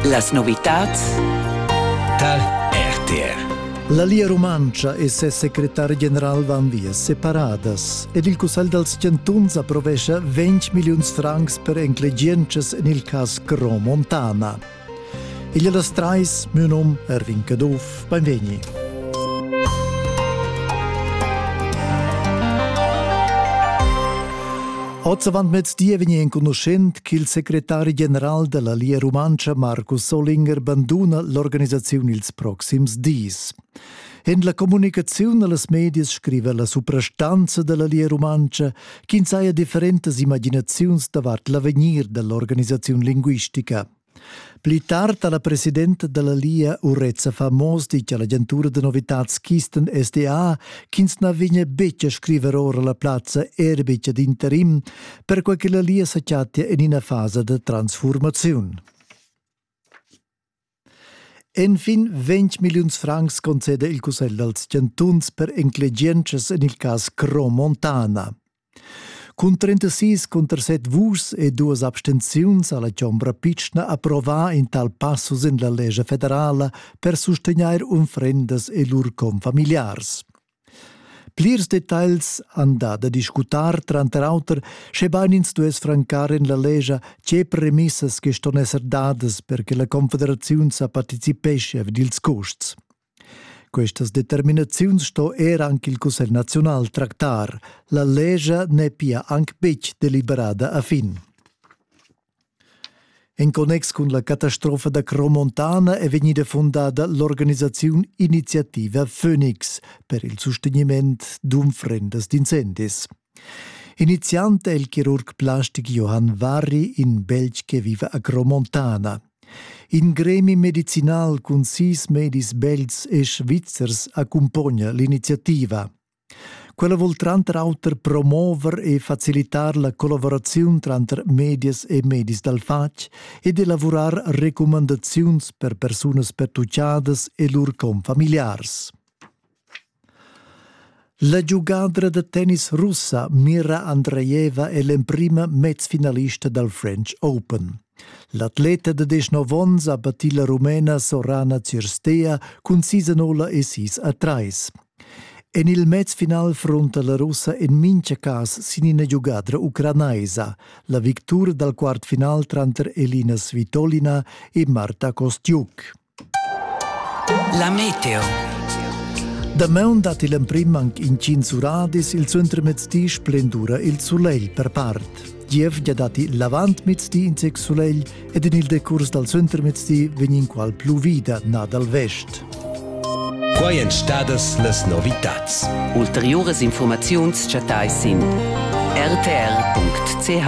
Las novitads tar RTR. La Lia Rumantscha e ses secretar general van via separadas ed il Cussegl dals chantuns approvescha 20 milliuns francs per enclegientschas en il cas Cro Montana. Igl las trais, Münum, Erwin Caduff, Beinvegni. Ozavant mez di vegni enconuschent ch'il secretari general della Lia Rumantscha Markus Solinger banduna l'organisaziun ils proxims dis. En la communicaziun allas medias scriva la suprastanza della Lia Rumantscha ch'ins haja differentas imaginaziuns davart l'avegnir dell'organisaziun linguistica. Pli tard ha la presidenta dalla Lia Urezza Famos ditg all'agentura da novitads Kisten SDA ch'ins na vegnia betg a scriver ora la plazza er betg ad interim, perquai che la Lia sa chattia en ina fasa da transfurmaziun. Enfin 20 milliuns francs conceda il cussegl dals chantuns per enclegientschas en il cas Cro Montana. Cun trentasis cunter set vuschs e duas abstenziuns ha la chombra pitschna approvà in tal passus en la lescha federala per sustegnair unfrendas e lur confamiliars. Plirs detagls han dà da discutar tranter auter, schebain ins duess francar en la lescha tge premissas che ston esser dadas per che la Confederaziun sa participeschia vid ils custs. Questas determinaziuns sto era anche il Cussegl nazional tractar. La legia n'è pia anc betg deliberada a fin. En connex cun la catastrofa da Cromontana è vegnida fundada l'organisaziun Iniziativa Phoenix per il sustegniment d'unfrendas d'incendis. Iniziant è il chirurg plastic Johann Warri in Belg che vive a Gromontana. In gremi medicinal cun sis medis belgs e svizzers accumpogna l'iniziativa. Quella vuol tranter auter promover e facilitar la collaborazione tranter medias e medis dal fatg ed elaborar recommandazioni per persunas pertucciadas e lur confamiliars. La giugadra da tennis russa Mira Andreeva è l'emprima mezfinalista dal French Open. L'atleta da 19 onns ha battì la rumena Sorana Cirstea cun sis anola e sis a trais. En il mezfinal frunta la russa en mintga cas sin ina giugadra ucranaisa, la victura dal quart final tranter Elina Svitolina e Marta Kostiuk. La meteo. Damaun datti l'emprim anc intgins uradis, il suentermezdi splendura il sulegl per part. Gievgia datti l'avantmezdi in zec sulegl ed en il decurs dal suentermezdi vegn inqual pluvida nà dal vest. Quai èn stadas las novitads. Ulteriuras informaziuns chattais sin rtr.ch.